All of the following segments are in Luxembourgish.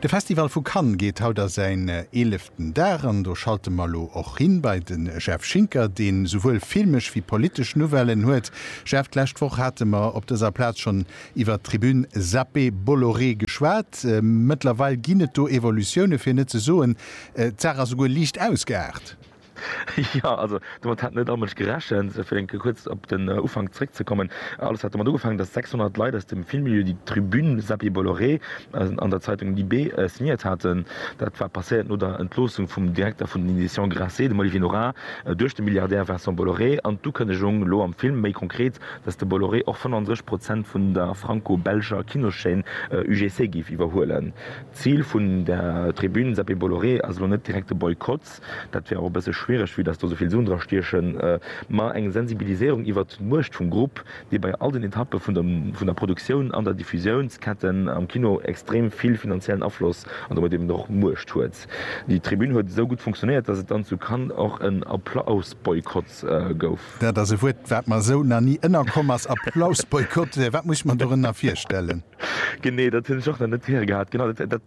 De Festival vu Cannes geet haut a säin eeleften Dag an do schalte mer elo och hin bei de Jeff Schinker, dee souwuel filmesch wéi politesch Nouvellen huet. Jeff, d'lescht Woch hate mer op dëser Plaz schonn iwwert d'Tribune Zappé Bolloré geschwat. Mëttlerweil ginn et do Evolutioune, fir net ze soen, d'Saach ass souguer liicht ausgeaart. Jo, also domat hat net all Mënsch gerechent. Fir eng Kéier kuerz op den Ufank zréckzekommen, Alles hat domat ugefaangen, datt 600 Leit aus dem Filmmilieu déi d'Tribune Seppi Bolloré an der Zeitung Libé signéiert haten. Dat war passéiert no der Entloossung vum Direkter vun den Editions Grasset, dem Olivier Nora, duerch de Milliardär Vincent Bolloré an d'Ukënnegung, elo am Film méi konkret, datt de Bolloré och 35 Prozent vun der franco-belscher Kinoschaîne UGC géif iwwerhuelen. D'Zil vun der Tribune Seppi Bolloré ass elo net direkt de Boykott. dat wär och e bësse schwiereg, vue dass do esouvill Suen dra stiechen, ma eng Sensibiliséierung iwwert d'Muecht vum Grupp, dee bei all den Etappe vun der Produktioun an der Diffusiounsketten am Kino extrem vill finanziellen Afloss an domat eben och Muecht huet. Déi Tribün huet esou gutt funktionéiert, dass et dann zu Cannes och en Applausboykott gouf. Dat ass e Wuert, wat mer esou nach ni ënnerkomm ass, Applausboykott. Wat muss ech mer dorënner virstellen? Genee, dat hunn ech och nach net héiere gehat. Genau, dat, dat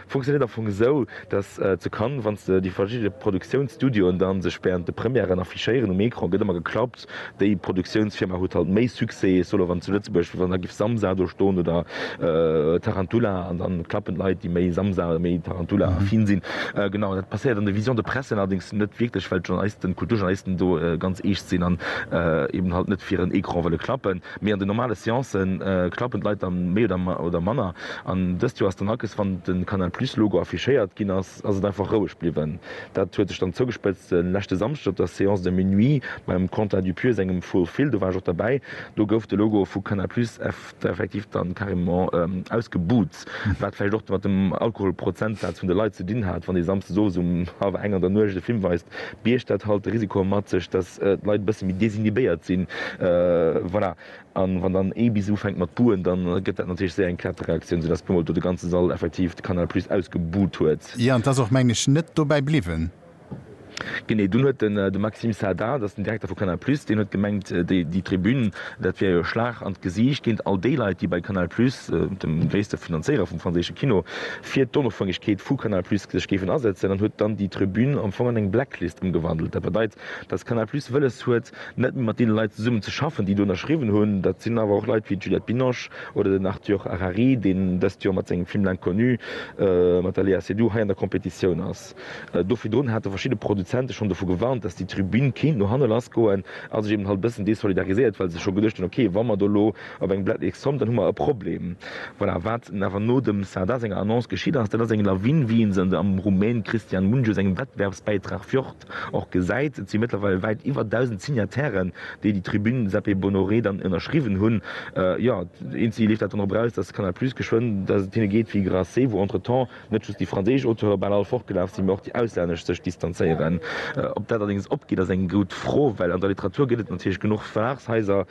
funktionéiert am Fong esou, dass zu Cannes, wann s de déi verschidde Produktiounsstudioen da sech während de Premièren affichéieren, um Ecran gëtt ëmmer geklappt, déi Produktiounsfirma huet halt méi Succès, ech soen elo wann zu Lëtzebuerg, wann da géif Samsa do ston oder Tarantula, an da klappen d'Leit, déi méi Samsa oder méi Tarantula affin sinn. Genau, dat passéiert an de Visions de presse allerdéngs net wierklech, well d'Journalisten, d'Kulturjournalisten do ganz eescht sinn an eeben halt net fir en Ecran wëlle klappen. Mee an den normale Seancë klappen d'Leit dann méi oder manner. An dëst Joer ass dann akes, wann de Canal Plus Logo affichéiert ginn ass, ass et einfach roueg bliwwen. Dat huet sech dann zougespëtzt de leschte Samschdeg op der Séance de minuit beim Quentin Dupieux sengem Full Fil. Do war ech och derbäi. Do gouf de Logo vu Canal Plus effektiv dann carrément ausgebuht. Fest, wat vläicht och mat dem Alkoholprozentsaz vun de Leit ze dinn hat, wann ee samsdes owes um hallwer eng an der Nuecht e Film weist, biergt dat halt de Risiko mat sech, dass d'Leit e bësse méi desinhibéiert sinn. Voilà. A wann dann ee bis ufänkt mat buhen, da gëtt dat natierlech séier eng Kettereaktioun, soudass puermol do de ganze Sall effektiv de Canal Plus ausgebuht huet. Jo, an 't ass och, mengen ech, net dobäi bliwwen. Genee, dunn huet den de Maxime Saada, dat ass den Direkter vu Canal Plus, deen huet gemengt, déi déi Tribün, dat wär jo e Schlag an d'Gesiicht géint all déi Leit, déi bei Canal Plus, dem gréisste Finanzéierer vum franséische Kino, fir d'Onofhängegkeet vu Canal Plus sech géifen asëtzen, an huet dann déi Tribün am Fong an eng Blacklist ëmgewandelt. Dat bedeit, datt Canal Plus wëlles huet, net méi mat deene Leit zesummen ze schaffen, déi do ënnerschriwwen hunn. Dat sinn awer och Leit wéi d'Juliette Binoche oder den Arthur Harari, deen dëst Joer mat sengem Film L'Inconnu mat der Léa Seydoux hei an der Competitioun ass. Do virdrun hate verschidde Produzente schonn dovu gewarnt, dass déi Tribün kéint no hanne lass goen a sech eben halt e bëssen desolidarisiert, well se scho geduecht hunn, ok, wa mer do elo op eng Blatt X kommen, dann hu mer e Problem. Voilà, wat awer no dem Sardar senger Annonce geschitt ass, dat ass eng Lawin, wéi ee se an de am Rumän Cristian Mungiu sengem Wettbewerbsbäitrag Fjord och gesäit. Et si mëttlerweil wäit iwwer 1.000 Signatairen, déi déi Tribün Sepe Bonoré dann ënnerschriwwen hunn. Jo, eenzi leeft dat dann drop eraus, dass Canal Plus geschwënn, dass et hinne geet wéi Grasset, wou entretemps, net just déi franséisch Auteure bal all fortgelaf sinn, mä och déi auslännesch sech distanzéieren. Ob dat allerdéngs opgeet, ass eng gutt Fro, well an der Literatur gëtt et natierlech genuch Verlagshaiser,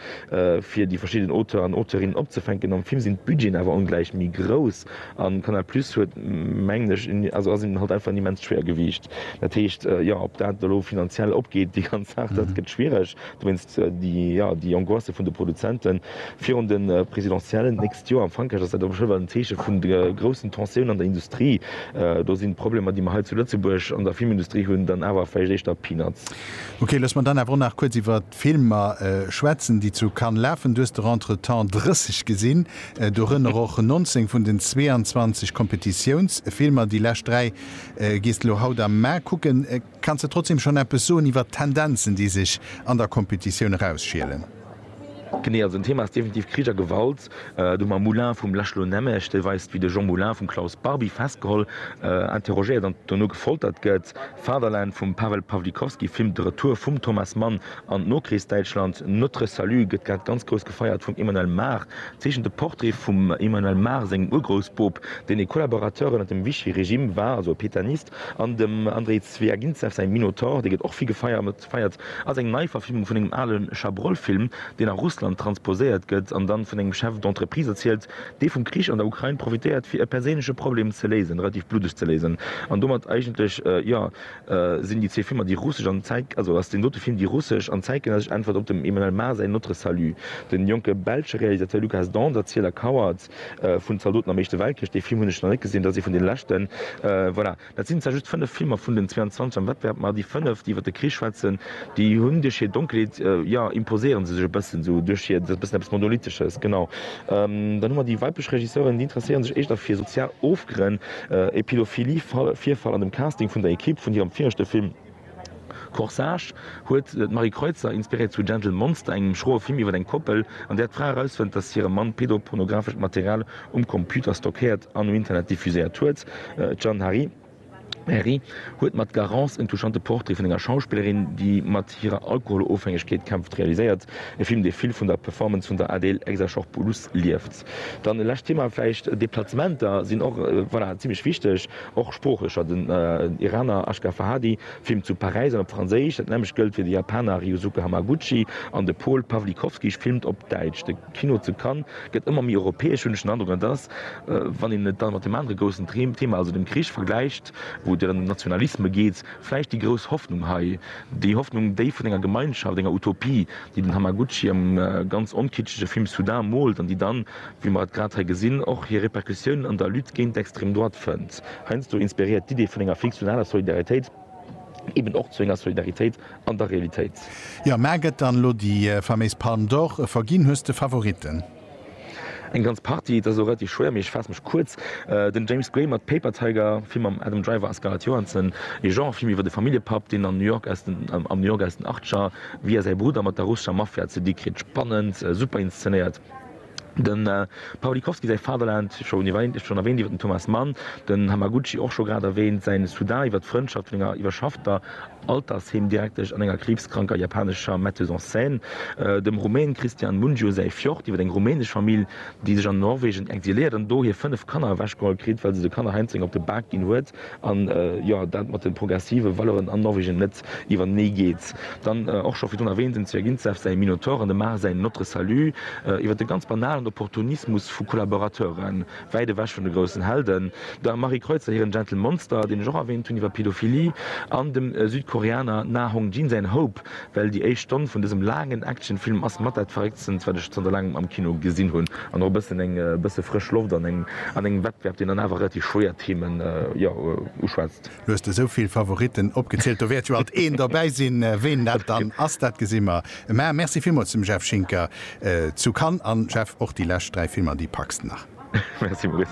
fir déi verschidden Auteuren an Auteurinnen opzefänken. Am Film sinn d'Budgeten awer ongläich méi grouss a Canal Plus huet, mengen ech, also ass hinnen halt einfach en immenst Schwéiergewiicht. Dat heescht, jo, ob dat elo finanziell opgeet, déi ganz Saach, dat gëtt schwiereg. Du mengs déi Angoisse vun de Produzenten virun de Presidentiellen d'nächst Joer? Am Frankräich ass dat awer schonn ewell en Zeeche vun der groussen Tensioun an der Industrie. Do sinn d'Problemer, déi mer hei zu Lëtzebuerg an der Filmindustrie hunn, dann awer vläicht éischter Peanuts. Ok, looss mer dann awer och nach kuerz iwwert d'Filmer schwätzen, déi zu Cannes lafen. Du hues der entretemps 30 gesinn, dorënner och 19 vun den 22 Kompetitiounsfilmer. Déi lescht dräi gees de lo haut am Mä kucken. Kanns de trotzdem schon eppes soen iwwert d'Tendenzen, déi sech an der Kompetitioun erausschielen? Genee, also en Thema ass definitiv Krich a Gewalt. Do hu mer Moulin vum László Nemes, dee weist, wéi de Jean Moulin vum Klaus Barbie festgeholl, interrogéiert an dono gefoltert gëtt. Fatherland vum Pawel Pawlikowski filmt de Retour vum Thomas Mann an d'Nokrichsdäitschland. Notre Salut gëtt grad ganz grouss gefeiert vum Emmanuel Mar. Zeechent e Portrait vum Emmanuel Mar sengem Urgroussboob, deen e Collaborateur ënnert dem Vichy-Regime war, also e Pétainiste. An dem Andrei Zwiagintsev säi Minotaur, dee gëtt och vill gefeiert, ass eng Neiverfilmung vun engem ale Chabrol-Film, deen a Russland transposéiert gëtt an dann vun engem Chef d'entreprise erzielt, dee vum Krich an der Ukrain profitéiert, fir e perséinleche Problem ze léisen, relativ bluddeg ze léisen. An domat eigentlech, jo, sinn déi zwee Filmer déi russesch an, also ass deen dote Film déi russesch an zäitgenëssesch Äntwert op dem Emmanuel Mar säin Notre Salut. De jonke belsche Realisateur Lukas Dont, Erzieler, Kauert. vun Zaldoten am Éischte Weltkrich, dee Film hunn ech nach net gesinn, dat ass ee vun den leschten. Voilà, dat sinn zwar just fënnef Filmer vun den 22 am Wettbewerb, ma déi fënnef, déi iwwer de Krich schwätzen, déi hunn duerch hir Donkelheet, jo, imposéiere se sech e bëssen esou duerch hir, dat ass e bëssen eppes Monolithesches, genau. Dann hu mer déi weiblech Regisseuren, déi interesséiere sech éischter fir sozial Ofgrënn, e Pädophilie-Virfall an dem Casting vun der Ekipp vun hirem viregte Film. Corsage huet d'Marie Kreutzer inspiréiert zu Gentle Monster, engem schroe Film iwwer eng Koppel, an där d'Fra erausfënnt, datt hire Mann pedopornografescht Material um Computer stockéiert an um Internet diffuséiert huet. D'Jeanne Herry huet mat Garance en touchante Portrait vun enger Schauspillerin, déi mat hirer Alkoholofhängegkeet kämpft, realiséiert, e Film, dee vill vun der Performance vun der Adele Exarchopoulos lieft. Kontext. Dann e lescht Thema vläicht, Deplacementer sinn och, voilà, zimlech wichteg, och sproochlecher. Den Iraner Ashgar Farhadi filmt zu Paräis an op Franséisch, dat nämmlecht gëllt fir de Japaner Ryusuke Hamaguchi an de Paul Pawlikowski filmt op Däitsch. De Kino zu Cannes gëtt ëmmer méi europäesch, hunn ech den Androck. An et ass, wann een et dann mat deem anere groussen Thema, also dem Krich vergläicht, wou et ëm Nationalisme geet, vläicht déi grouss Hoffnung hei, déi Hoffnung, déi vun enger Gemeinschaft, enger Utopie, déi den Hamaguchi am ganz onkitschege Film Soudain moolt an déi dann, wéi mer et grad hei gesinn, och hir Repercussiounen an der Lutte géint d'Extrême droite fënnt. Heiansdo inspiréiert d'Idee vun enger fiktionaler Solidaritéit eben och zu enger Solidaritéit an der Realitéit. Jo, mä gëtt dann elo déi faméis Palme d'Or verginn? Hues de Favoritten? Eng ganz Partie, et ass elo relativ schwéier, mee ech faasse mech kuerz. Den James Gray mat Paper Tiger, Film mam Adam Driver a Scarlett Johansson, ee Genre-Film iwwer e Familljepapp, deen an New York aus den am New York aus den Achtscher via säi Brudder mat der russescher Mafia ze di kritt. Spannend, super inszenéiert. Dem Pawlikowski säi Fatherland, scho erwäänt iwwer den Thomas Mann, den Hamaguchi och scho grad erwäänt, säin Sudan iwwer d'Frëndschaft vun enger iwwerschaffter, Altersheemdirektesch an enger kriibskranker japanescher Metteuse en scène, dem Rumän Cristian Mungiu säi Fjord, iwwer eng rumänesch Famill, déi sech an Norwegen exiléiert an do hir 5 Kanner ewechgeholl kritt, well se de Kanner heiansdo eng op de Bak ginn huet an, jo, dat mat de progressive Valeuren an Norwegen net iwwertenee geet. Dann och scho virdrun erwähnt, dem Zwyagintsev säi Minotaur an dem Mar säin Notre Salut, iwwer de ganz banalen Opportunismus vu Kollaborateuren, wäit ewech vun de groussen Helden, der Marie Kreutzer hiren Gentle Monster, deen ech och erwähnt hunn, iwwer Pedophilie, an dem Südkoreaner Na Hong Jin säin Hope, well déi éischt Stonn vun dësem laangen Actionfilm ass mat dat Verrécktstens, wat ech zanter laangem am Kino gesinn hunn, an och e bëssen eng bësse frësch Loft an engem Wettbewerb, deen dann awer relativ schwéier Themen, jo, uschwätzt. Lo hues de esou vill Favoritten opgezielt, do wäert jo alt een dobäi sinn. Ween dat dann ass, dat gesi mer Mä merci villmools dem Jeff Schinker zu Cannes, an Jeff, och déi lescht 3 Filmer déi packs de nach? Merci Maurice.